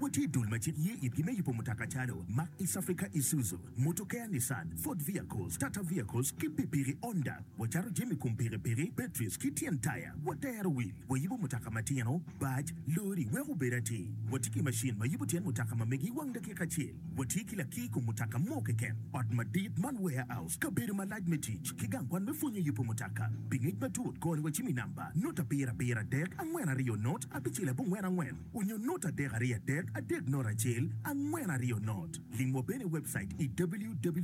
Watye i dul ma cik ye itgi me yubo mutoka calo, Mark East Africa Isuzu, Motor Care Nissan, Ford Vehicles, Tata Vehicles, ki pikipiki Honda. Wacato jami kom pikipiki, batteries, ki tyen taya. Watero wil. Wayubo mutoka matino, bac, lori, wek obed atir. Watye ki macin ma yubo tyen mutoka ma megi i wang dakika acel. Watye ki lakir i kom mutoka mo keken, ot madit man warehouse, kabedo malac me tic, ki gang kwan me pwonyo yubo mutoka. Pi ngec matut, kor ni wacim i namba, Note abiro abiro adek angwen aryo Note abicel abongwen angwen. Onyo not adek ariyo adek adek not acel angwen ariyo not. Ling wa bene i webcait i www.maco.ug.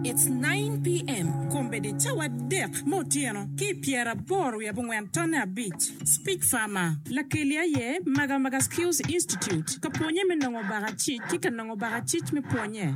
It's nine PM kombeddi cawa adek me otyeno ki i pyera aboro wiye abongwen tonne abic. Speech Farmer, Lakeli aye Maga Maga Skills Institute ka pwonye me nongo baka cic ki ka nongo baka cic me pwonye.